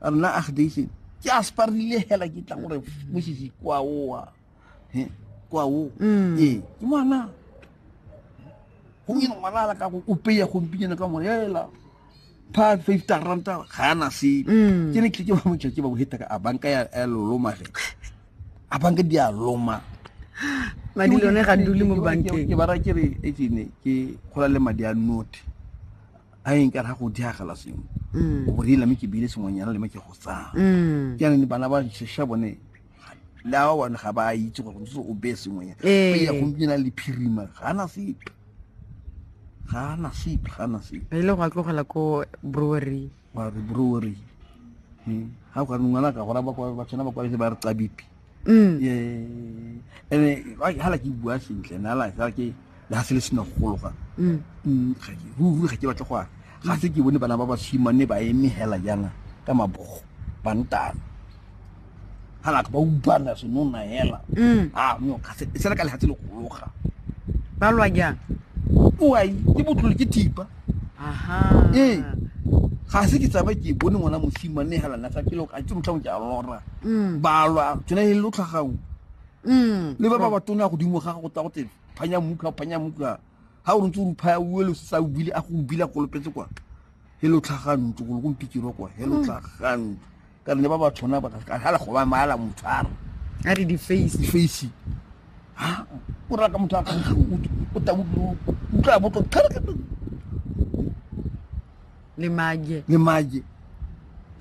rna agdation ke a sparile hela ke tlang gore mosisi kwa oa kwa o mm. ee ke ngwana gomyene ngwana ala ka go opeya gompinyana ka mone hela pa fifty ranta ga ana sepe mm. ke ne tleke ba motšatši ba boheta ka a banka ya lolomage a banka di a loma madi lone ga dule mo bankeng ke bara ke re etsene ke gola le madi a note a eng ka ra go diagela sengwe mm. o borile mme ke bile sengwenyana le me ke go tsaya mm. ke aneng bana ba shesha bone le a bone ga ba itse gore ntse o beye sengwenyana ee. e ya gompiena le phirima ga ana sepe ga ana sepe ga ana sepe e le go a tlogela ko brewery wa re brewery ga hmm. o ka ngwana ka gora ba tshwana ba kwaletse ba re tsa bipi mm. ga la ke bua sentle na la ga ke le ga se le sena go gologa mm. mm, ruri ga ke batla go a ga se ke bone bana ba basimane ba eme hela jana ka mabogo bantana ga la ba ubana senona hela a no ga se le ka legatse le gologa ba lwa jang oai ke botlole ke thipa ee ga se ke tsaba ke bone ngwana mosimane mme hela nna sa pele a tse motlhang ke a lora mm. balwa tsena e lo tlhagao mm. le ba ba ba tona godimo ga go tsa go tsebe phanya muka phanya muka ha o ntse o phaya o le sa o bile a go bile a kolopetse kwa he lo tlhagantso go go mpikiro kwa he lo mm. tlhagantso ka re ne ba ba tshwana ba ka hala go ba mala motshwara a re di face di face ha o ra ka motho a kgang o ta utlwa botlo tlhare ka le mage le mage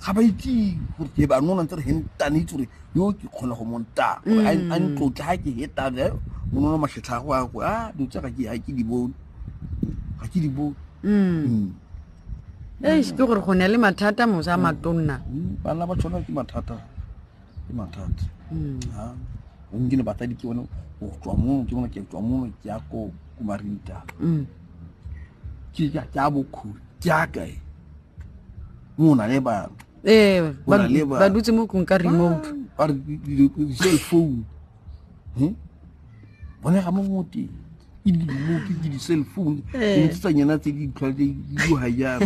ga ba itse gore ke ba nona ntse re hentane itse gore yo ke kgona go monta gore a mm. ntlotle ga ke hetane eh, monono matlhetlha go a go a ah, dilo tse ga ke di bone ga ke di bone mm. mm. e ke gore go ne le mathata mosa a matonna hmm, bana ba tshwana ke mathata ke mathata hmm. onke le batladi ke bone go tswa mono ke bone ke tswa mono ke ya ko kumarinta hmm. ke ya ke a bokhuri ke ya kae mo na le ba eh ba dutse mo kung ka remote ba re di cell phone hmm? bone ga mo mo teng ke dilemo ke ke di-cell phone ke eh. ntse tsa nyena tse di tlhwa di hajana